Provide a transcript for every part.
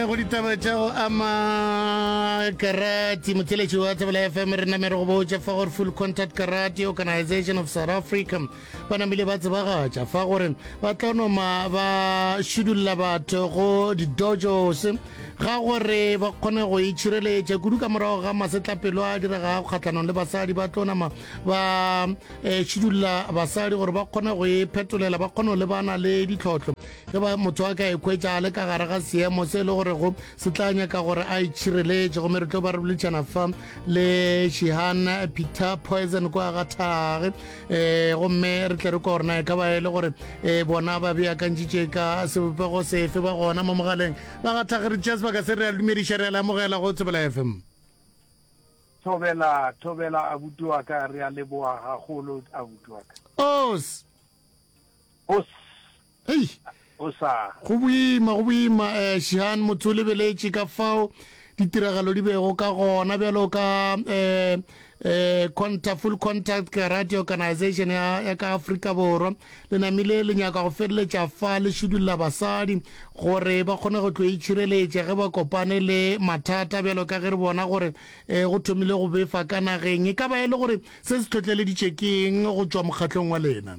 go ditaba tša go ama karate motheletši wa tsebela fm re namere go botša fa gore full contact karate organization of south africa ba namile ba tsebagatša fa gore ba tla noma ba šidulla batho go didojos ga gore ba kgone go itšhireletša kudu ka morago ga masetlapelo a diregago kgatlhanong le basadi ba tlo nama ba eh, šidulla basadi gore ba kgone go e phetolela ba kgone go lebana le ditlhotlho ge ba motho a ka ekhwetša a le ka gare ga seemo se e le gore go se tla nyaka gore a itšhireletše gomme re tlo ba re bolitšana fa le shihan peter poison kwa ga thage um gomme re tle re kwa gore na e ka ba e le gore um bona ba beakantšitše ka sebopego sefe ba gona mo mogaleng ba gatlhageritša sebaka se re a dumediša re a lamogela go tsebela fm thobela thobela abuti wa ka re a leboa gagolo abuti wa ka os os Hei! O sa. Go boima, go boima, eh, Shihan, motse o lebeletše ka fao ditiragalo di bego ka gona, bjalo ka, eh, eh, contact, full contact karate organization ya, ya ka Afrika Borwa. Le namile le nyaka go feleletša fa le šidulla basadi gore ba kgone go tlo itšhireletša ge ba kopane le mathata, bjalo ka ge re bona gore, eh, go thomile go befa ka nageng. E ka ba e le gore se se tlhotleleditše keng go tšwa mokgatlong wa lena?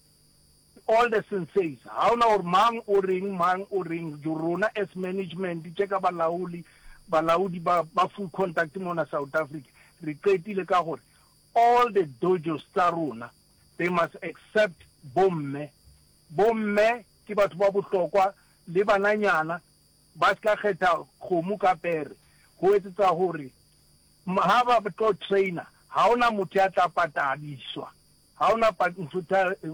All the senseis, ga o na gore mang o reng, mang o reng, rona as management tše ka balaoli, balaodi ba, ba full contact mona South Africa, re qetile ka gore all the dojos tsa rona they must accept bomme. Bomme ke batho ba bohlokwa le bananyana ba se ka kgetha kgomo ka pere go etsetsa gore ha ba tlo trainer ga o na motho ya tla patadiswa. Ga o na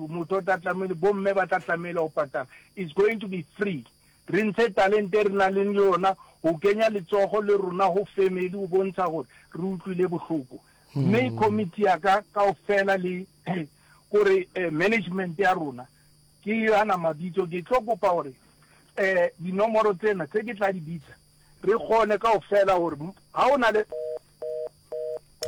motho o tla tlamehile, bomme ba tla tlamehile go patala. It's going to be free. Re ntshe talente e re nang le yona go kenya letsogo le rona go family go bontsha gore re utlwile bohloko. Mme committee ya ka kaofela le gore management ya rona ke yana mabitso, ke tlo kopa gore dinomoro tsena tse ke tla di bitsa re kgone kaofela gore ga o na le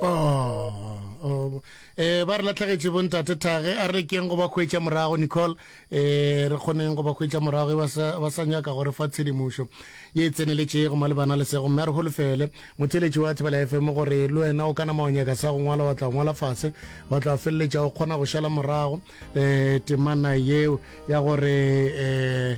Oh, eh ba re latlhegetše bontate thage a re keng go ba kgwetša morago nicole eh re kgoneng go ba kgwetša morago e ba sa nyaka gore fa tshedimošo ye e tseneletše go malebana le sego mme a re holofele motheletši wa thibela fm gore le wena o ka nama wa nyaka sa go ngwala wa tla ngwala fase wa tla feleletša o kgona go šala morago um temana yeo ya gore um